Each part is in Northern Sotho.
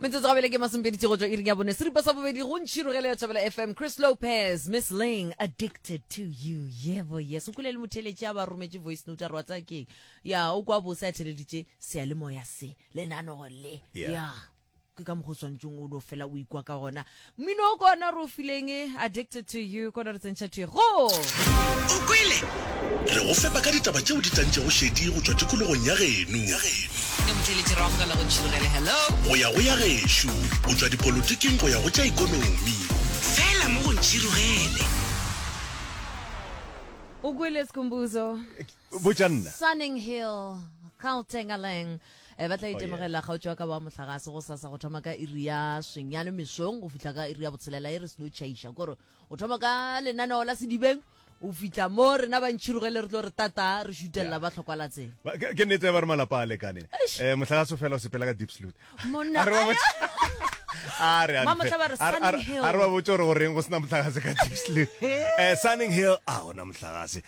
metsotso gabele ke masompeditse go tswa iring ya bone seripa sa bobedi go ntšhirogele ya tšhabela fm chris lopez miss ling addicted to you yebo yes o kule le motheletše a ba rometše voice note a re wa tsaya keng ya o kwa bose a theleditše seyalemoya se lenanego le Yeah. ya ke ka mokgwa o swanetseng o no fela o ikwa ka gona Mmino o ko ona re o fileng, Addicted to you, ko ona re tsentšha thwi. Go! O kwele? Re go fepa ka ditaba tšeo di tlantšego šedi go tšwa tikologong ya geno. Ke motšweletši Rrago ka la go ntšhirogele. Hello! Go ya go ya gešo, go tšwa dipolotiking go ya go tša ikonomi. Fela mo go ntšhirogele. O kwele, Skhumbuzo? Botša nna. Sunninghill, Gauteng, Aleng. Eh, ba tla itemogela kgaotso wa ka wa mohlagase go sasa go thoma ka iri ya senyane mesong go fitlha ka iri ya botshelela e re seno chaiša kore o thoma ka lenaneo la sedibeng o fitlha mo rena ba ntšhirogele re tlo re tata re šutelela ba tlhokwa latseng Ba- ke ke nnete ya ba re malapa a lekane um motlhagaso fela o sepela ka deep salute Monna, A re ba ayo. botse- a re a Ba ntle. motlha ba re A re- a re- Sunning Hill. a re ba botse gore goreng go sena motlhagase ka deep salute Eh, sunning hill a gona motlhagase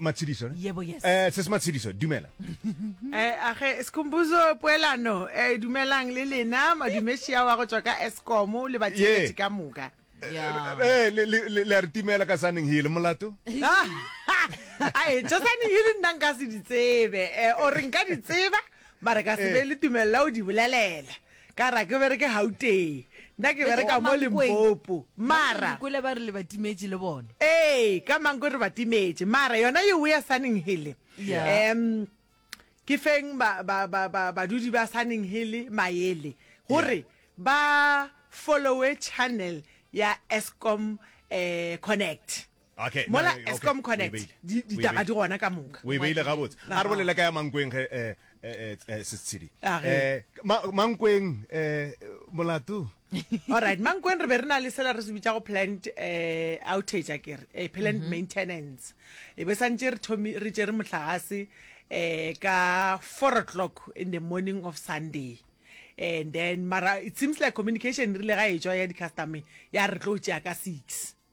Matshidiso ne? Yebo, yes. Eh, se se Matshidiso, dumela. Eh, age Sikhumbuzo poelano, eh dumelang le lena madumeshi a wa go tswa ka Eskom le ba tšeletše ka moka. Yeah. Eh, le le le le a re timela ka saneng hile molato. Ah, Ai, tša sane hile nna nka se di tsebe. Eh, o re nka di tseba, mara ka se be le tumelela o di bolelela. Ka ra ke bereke Gauteng. Nna ke bereka mo Limpopo. Mara. Dikwele ba re le ba timetše le bona. Ee, ka Mankweng re ba timetše. Mara yona ye oe ya Sunning Hill. Em ke feng ba ba ba ba badudi ba Sunning Hill maele gore ba follow-e channel ya Eskom eh Connect. Okay, mola okay, Eskom Connect di ditaba di gona ka moka o e beile gabotse a re bolela ka ya mankweng ge eh, eh, eh, sesitshedi eh, mankweng eh, molato alright mankweng re be re na le sela re se bitsa go plant eh, outage a kere eh, plant mm -hmm. maintenance e be santse re thomi re tsere motlagase eh, ka four o'clock in the morning of sunday and then mara it seems like communication rile ga e tswa ya di-customer ya re tlo tšea ka six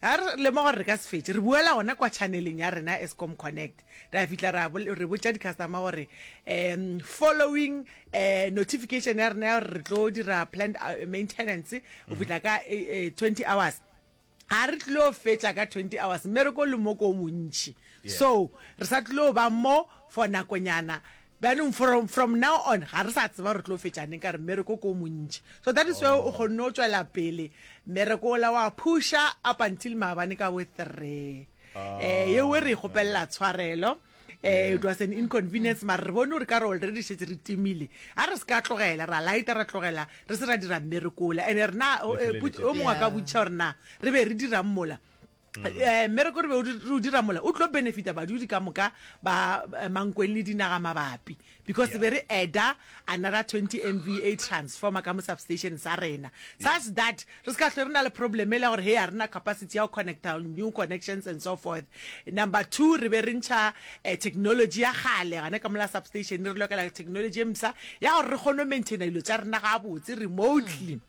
Ge re lemoga gore re ka se fetše, re boela gona kwa tšhaneleng ya rena ya Eskom Connect, ra fihla ra re botša di-customer gore um following um notification ya rena ya gore re tlo dira plant uh, maintenance go mhm. fihla ka eh, eh, twenty hours ga re tlilo fetša ka twenty hours mmereko le moko o montšhi so re sa tlilo ba mo for nakonyana Bjanong from from now on ga re sa tseba re tlo fetša neng ka re mmereko ko montši. So that is why o kgonne o tšwela pele mmereko ola wa phusha up until maabane ka bo three. Eh ye we re ikgopelela tshwarelo. Eh it was an inconvenience mara re bone gore ka re already šetse re timile. A re se ka tlogela ra lighter ra tlogela re se ra dira mmereko ola ene rena o mongwe a ka botšiša gore na re be re dirang mola. um eh, mmereko re be o di- re o dira mola o tlo benefita badudi ka moka ba eh, mankweng le dinaga mabapi because be re adda another 20 mva transformer ka mo substation sa rena such that re se ka hlwe re na le problem e le ya gore he a rena capacity ya go connecta new connections and so forth number two re be re ntšha eh, technology ya kgale gane ka mola substation re lokela technology e msa ya gore re kgone go maintaina dilo tša rena gabotse remotely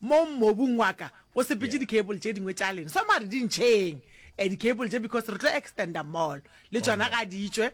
mo mobung wa ka o sepetše di cable tše dingwe tša lena so mare di ntšheng eh, di cable tše because re tlo extenda mall le oh, tšona ga di tšwe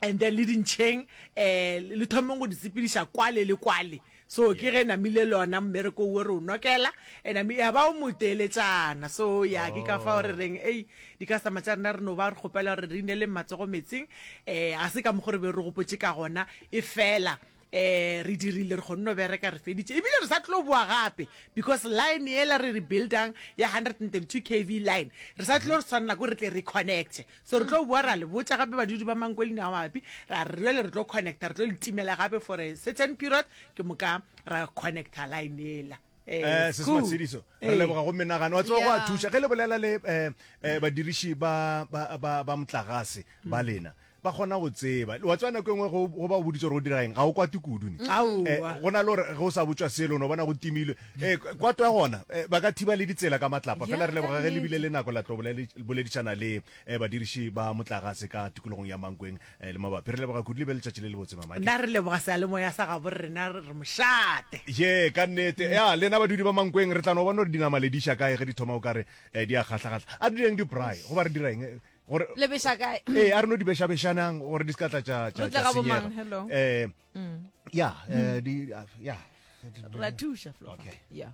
and then le dintšheng eh le thomeng go di sepediša kwale le kwale so ke ge namile le ona mmereko o re o nokela and i mean ba o moteletšana so ya ke ka fa o re reng ei di ka sama tša rena re no ba re kgopela gore re inele matsogo metsing eh a se ka mokgwa re be re gopotše ka gona e fela Eh re dirile re kgonne go bereka re feditše ebile re sa tlo boa gape because line ela re re buildang ya 132 kv line re sa tlo re tshwanela ko re tle re connecte so re tlo boa ra le botša gape badudi ba mankolini ao mabapi ra re jale re tlo connecta re tlo le timela gape for a certain period ke moka ra connecta line ela Eh, eh se se matshediso re eh. leboga go menagano wa tsogo a thuša ge le bolela le eh, eh badiriši ba ba ba ba motlagase ba hmm. lena ba kgona go tseba wa tswa nako e nngwe go ba o boditse gore o dira eng ga o kwate kudu ne hmm. eh, go na le gore ge o sa botswa selo no bona go timilwe um kwato ya gona ba ka thiba le ditsela ka matlapa fela re leboga ge lebile le nako la tlo boledišana le um badiriši ba motlagase ka tikologong ya mankweng Le mabapi. Re leboga kudu, le be letšatši le lebotse, Mamaki. Na re leboga sealemoya sa gabo rena, re re mošate. Ye, ka nnete. Ya, lena badudi ba Mankweng, re tla no bona gore dinama le di iša kae ge di thoma o ka re di a kgahla-kgahla. A re direng di-braai, goba re dira eng? Gore, Le beša kae? Ee, a re no di beša-bešanang gore di se ka tla tša, tša, Re tle tša ga bomang? senyega. Hello. Eh, ya, eh, di, ya. Re a thuša, Flofa. Okay. Ya.